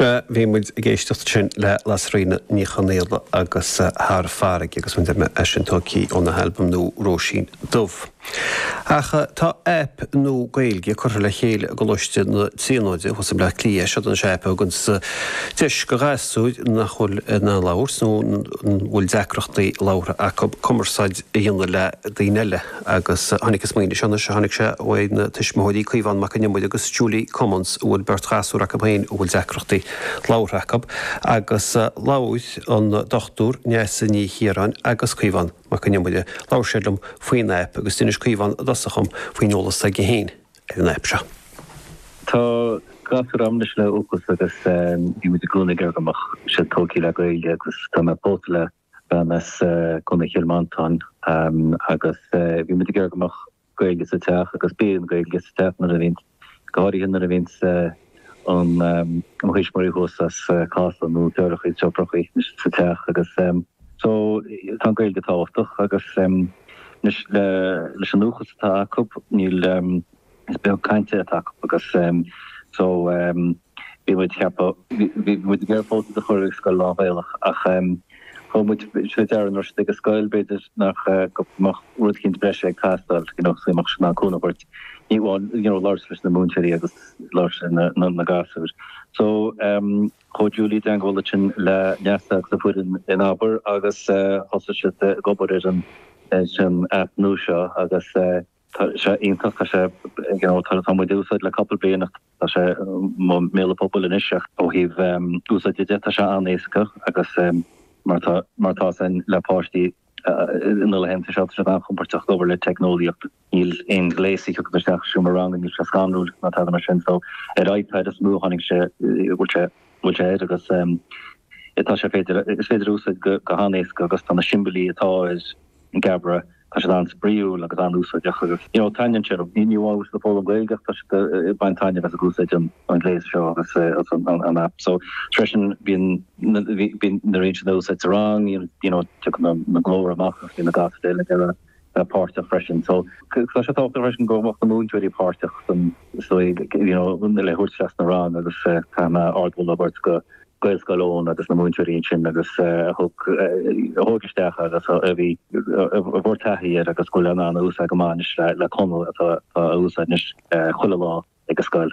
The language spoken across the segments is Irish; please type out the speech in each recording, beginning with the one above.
Sea, bhí muid ag éisteacht ansin le Lasairfhíona Ní Chonaola agus Thar Farraige agus mar a dúirt mé é sin tógtha óna halbam nua Róisín Dubh. Ach tá aip nua Gaeilge curtha le chéile i gColáiste na Tríonóide, thuas i mBleá Cliath. Seod í an aip a thugann deis do ghasúir nach bhfuil in ann labhairt nó a bhfuil deacrachtaí labhartha acu cumarsáid a dhéanamh le daoine eile. Agus tháinig an smaoineamh seo, anois a tháinig sé uaidh na tuismitheoirí, Caomhán Mac Con Iomaire agus Julia Cummins, a bhfuil beirt ghasúr acu féin a bhfuil deacrachtaí labhartha acu. Agus labhair an Dr. Neasa Ní Chiaráin agus Caomhán Mac Con Iomaire, labhair siad liom faoin aip agus d'inis Caomhán i dtosach dhom faoin eolas atá aige féin ar an aip seo. Tá gasúr agam anois le uathachas agus bhí muid i gcónaí ag iarraidh go mbeadh siad tógtha le Gaeilge agus tá mé pósta le. bean as Contae Chill Mhantáin agus bhí muid ag iarraidh go mbeadh Gaeilge sa teach agus bíonn an Gaeilge sa teach nuair a bhíonns, go háirithe nuair a bhíonns an, mo thuismitheoirí thuas as Casla nó deartháireachaí is deirfiúrachaí sa teach agus so tá an Gaeilge tábhachtach agus anois leis an uathachas atá acu níl. Is beag cainte atá acu agus so bhí muid ag ceapadh, bhí muid ag iarraidh iad a chur i scoil lán-Ghaelach ach thug muid faoi deara nuair a thit an scoil b'fhéidir nach, go mbeadh rud éicint breise ag teastáil, you know, so bhí muid in ann cúnamh a thabhairt, ní amháin, you know, labhairt leis na múinteoirí agus labhairt leis na gasúir. So chuaigh Julia i dteagmháil ansin le Neasa agus a foireann in ABAIR agus thosaigh siad ag obair ar an app nua seo agus, Tá sé iontach, tá sé, you know, tá muid á úsáid le cúpla bliain ach tá sé i mbéal an phobail anois ach ó thaobh úsáide de tá sé an-éasca agus mar tá, mar tá a fhios againn le páistí sna laethanta seo tá siad an-chompordach ag obair le teicneolaíocht, níl an gléas ag tíocht isteach ansin sa rang, níl sé scanrúil ná tada mar sin so ar iPad is mó a tháinig sé, bhfuil sé, bhfuil sé air agus tá sé féidir, is féidir é a úsáid go han-éasca agus tá na siombailí atá air, I nGeabaire, tá siad an-spraíúil agus an-úsáideach agus you know taitníonn sé liom. Ní amháin go bhfuil siad ag foghlaim Gaeilge ach tá siad ag baint taitnimh as ag úsáid an ghléas seo agus an aip seo freisin. Bíonn na raon sin á úsáid sa rang you know tiocfaidh an glór amach agus bíonn na gasúir eile ag iarraidh páirteach freisin so tá sé tábhachtach freisin go mbeadh na múinteoirí páirteach ann you know le thabhairt isteach sa rang agus tá mé ardmholadh a thabhairt do Gaelscoil Eoin agus na múinteoirí ansin agus a thug, a thóg isteach agus a bhí, a bhfuair taithí air agus a bhfuil in ann a úsáid go maith anois le, le Conall atá a úsáid anois chuile lá ag an scoil.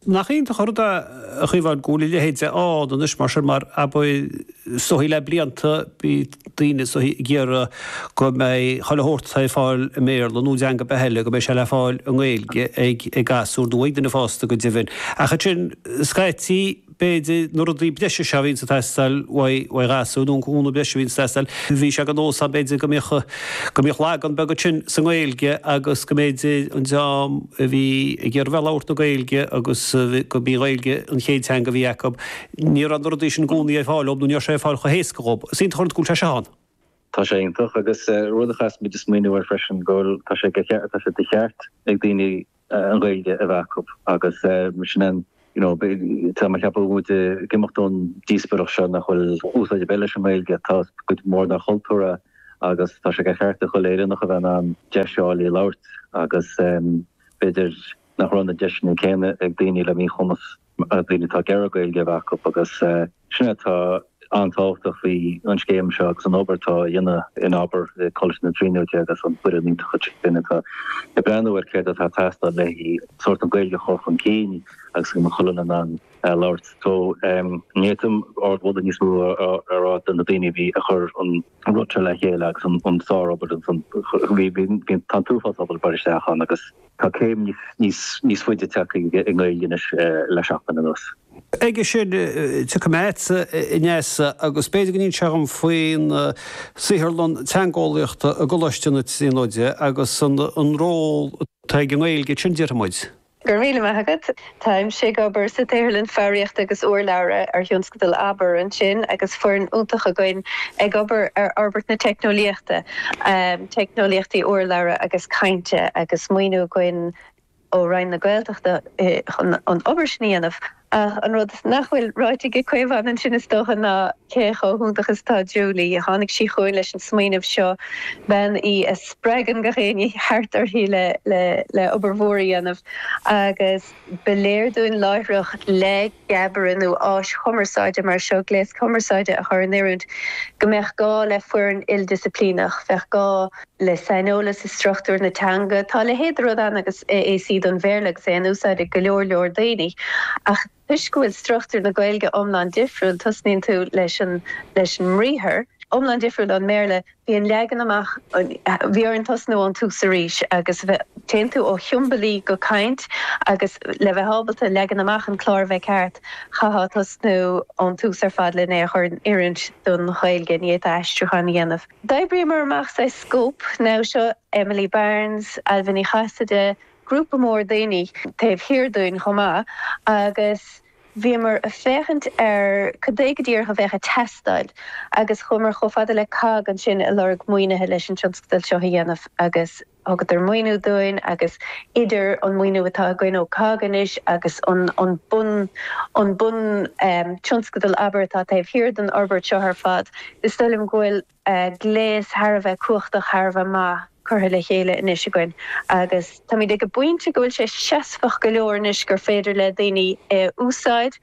Nach iontach an rud é, a Chaomhán, go bhfuil a leithéid ann anois mar sin mar ab é is dóichí le blianta, bhí daoine, is dóichí, ag iarraidh go mbeadh chuile shórt atá ar fáil i mBéarla nó i dteanga ar bith eile, go mbeadh sé le fáil i nGaeilge ag, ag gasúir nó ag daoine fásta go deimhin. Ach ansin scaití. b'fhéidir, na rudaí breise seo a bhíonn ag teastáil uaidh ghasúir, nó an cúnamh breise a bhíonn ag teastáil. Bhí sé de nós ann, b'fhéidir, go mbíodh, go mbíodh lagan beag ansin sa nGaeilge agus go mb'fhéidir, an dream a bhí ag iarraidh a bheith ag labhairt na Gaeilge agus gurb í an Ghaeilge an chéad teanga a bhí acu, ní raibh na rudaí sin i gcónaí ar fáil dhób nó ní raibh sé ar fáil chomh héasca dhób. Is iontach an rud go bhfuil sé seo ann. Tá sé iontach. Agus rud a chaithfeas muid smaoineamh air freisin go bhfuil, tá sé tá sé de cheart ag daoine an Ghaeilge a bheith acu agus mar sin an you know tá mé ag ceapadh muid ag imeacht ón díospóireacht seo nach bhfuil úsáid ar bith leis an nGaeilge. Tá cuid mhór dár chultúr a agus tá sé de cheart ag chuile Éireannach a bheith in ann deis a fháil í a labhairt agus b'fhéidir nach raibh na deiseanna céanna ag daoine le míchumas. daoine atá ag iarraidh Gaeilge a bheith acu agus sin é atá an-tábhachtach faoi an scéim seo agus an obair atá á dhéanamh in Abair i gColáiste na Tríonóide agus an foireann iontach sin atá ag breathnú ar céard atá ag teastáil le sórt an Ghaeilge a chur chun cinn agus go mbeadh chuile duine in ann labhairt. So, ní fhéadfainn ardmholadh níos mó a rá do na daoine a bhí ag cur an rud seo le chéile agus an sár-obair ansan. Bhí an t-uafás obair ag dul isteach ann agus. Tá céim níos faide tagtha i nGaeilge anois le seachtain anuas. Aige sin, tiocfaidh mé agatsa, a Neasa, agus b'fhéidir go n-inseofá dom faoin saotharlann teangeolaíochta i gColáiste na Tríonóide agus an ról atá ag an nGaeilge ansin, déarfaidh muid. Go raibh míle maith agat. Táimse ag obair sa tsaotharlann foghraíochta agus urlabhra ar thionscadal Abair ansin agus foireann iontach againn ag obair ar fhorbairt na teicneolaíochta, teicneolaíochtaí urlabhra agus cainte, agus maoiniú againn ó Roinn na Gaeltachta chun an obair sin a dhéanamh. Ach an rud nach bhfuil ráite ag Caomhán ansin is dócha ná cé chomh hiontach is atá Julie. Tháinig sí chugainn leis an smaoineamh seo, bean í a spreagann gach éinne thart uirthi le obair mhór a dhéanamh. Agus ba léir dúinn láithreach le Geabaire nó áis chumarsáide mar seo, gléas cumarsáide a chur in oiriúint, go mbeadh gá le foireann ildisciplíneach. Bheadh gá le saineolas i struchtúr na teanga. Tá a leithéid de rud ann agus AAC don Bhéarla agus é in úsáid ag go leor leor daoine ach, Toisc go bhfuil struchtúr na Gaeilge iomlán difriúil, tosnaíonn tú leis an leis an mbriathar, iomlán difriúil ón mBéarla, bíonn leagan amach, bhí orainn tosnú ón tús arís agus téann tú ó shiombailí go caint agus le bheith ábalta leagan amach an clár a bheith ceart, chaithfeá tosnú ón tús ar fad lena chur in oiriúint don Ghaeilge, ní fhéadfá aistriúchán a dhéanamh. D'oibríomar amach saghas scóip, naimhseo, Emily Barnes, Ailbhe Ní Chasaide, grúpa mór daoine taobh thiar dúinn chomh maith agus bhíomar ag féachaint ar cad é go díreach a bheadh ag teastáil agus chuamar chomh fada le COGG ansin ag lorg maoinithe leis an tionscadal seo a dhéanamh agus thugadar maoiniú dúinn agus idir an maoiniú atá againn ó COGG anois agus an bun an bun tionscadal Abair atá taobh thiar den fhorbairt seo ar fad is dóigh liom go bhfuil gléas thar a bheith cumhachtach, thar a bheith maith curtha le chéile anois againn agus táimid ag an bpointe go bhfuil sé seasmhach go leor anois gur féidir le daoine é a úsáid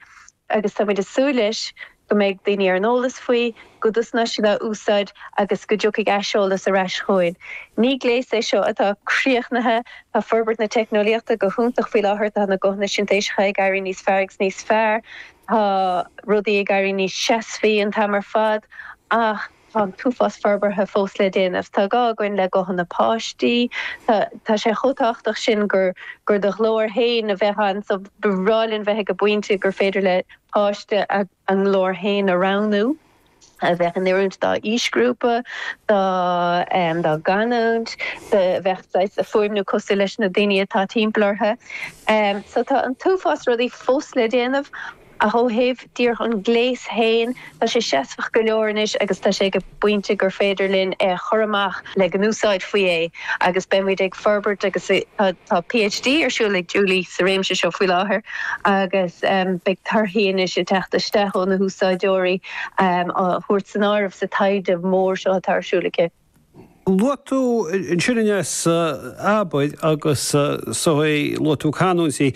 agus táimid ag súil leis go mbeidh daoine ar an eolas faoi, go dtosnóidh siad á úsáid agus go dtiocfaidh aiseolas ar ais chugainn. Ní gléas é seo atá críochnaithe, tá forbairt na teicneolaíochta go hiontach faoi láthair, tá na guthanna sintéiseacha ag éirí níos fearr agus níos fearr, Tá rudaí ag éirí níos seasmhaí an t-am ar fad ach tá an t-uafás forbartha fós le déanamh. Tá gá againn le guthanna páistí. Tá tá sé chomh tábhachtach sin gur do ghlór féin a bheadh ann so ba bhreá linn bheith ag an bpointe gur féidir le páiste a nglór féin a roghnú. a bheadh in oiriúint dá aoisghrúpa, dá dá gcanúint, a bheadh ag fuaimniú cosúil leis na daoine atá timpeall orthu. So tá an t-uafás rudaí fós le déanamh ach ó thaobh díreach an gléas féin, tá sé seasmhach go leor anois agus tá sé ag an bpointe gur féidir linn é a chur amach le go n-úsáidfí é agus beidh muid ag forbairt agus tá. Tá PhD ar siúl ag Julie sa réimse seo faoi láthair agus beidh torthaí anois ag teacht isteach ó na húsáideoirí á dtabhairt san áireamh sa taighde mór seo atá ar siúl aici. Luaigh tú ansin anseo Abair agus luaigh tú canúintí.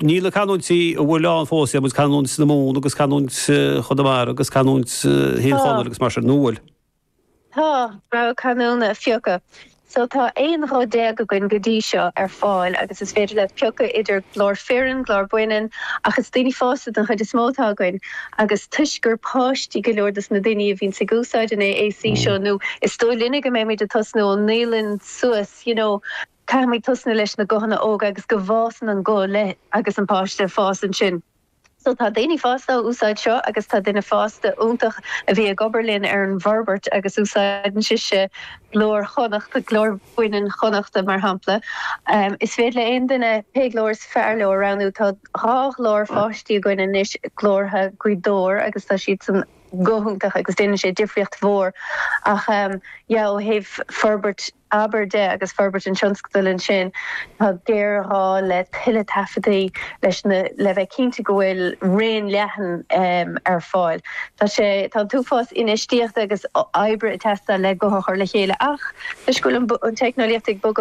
Níl na canúintí ar fáil ann fós, maidir le canúint na Mumhan agus canúint Chonamara agus canúint Thír Chonaill agus mar sin, nó an bhfuil? Tá rogha canúna phioctha so tá 11 ghuth againn go dtí seo ar fáil agus is féidir leat piocadh idir glór fireann, glór baineann ach is daoine fásta den chuid is mó atá againn agus toisc gur páistí go leor dos na daoine a bhíonns ag úsáid an AAC seo nó is dóigh linne go mbeimid ag tosnú ón naíolann suas you know caithfimid tosnú leis na guthanna óga agus go bhfásann an guth leo agus an páiste ag fás ansin. So tá daoine fásta á úsáid seo agus tá duine fásta iontach a bhí ag obair linn ar an bhforbairt agus úsáideann sise glór Chonnacht, glór baineann Chonnachta mar shampla. Is féidir le aon duine pé glór is fearr leo a roghnú. Tá dhá ghlór páistí againn anois, glórtha Ghaoth Dobhair agus tá siadsan go hiontach agus déanann sé difríocht mhór ach yeah ó thaobh forbairt, abair, de agus forbairt an tionscadail ansin, tá géarghá le tuilleadh taifeadtaí leis na le bheith cinnte go bhfuil raon leathan ar fáil. Tá sé tá an t-uafás infheistíochta agus oibre ag teastáil le guth a chur le chéile ach, toisc go bhfuil an teicneolaíocht ag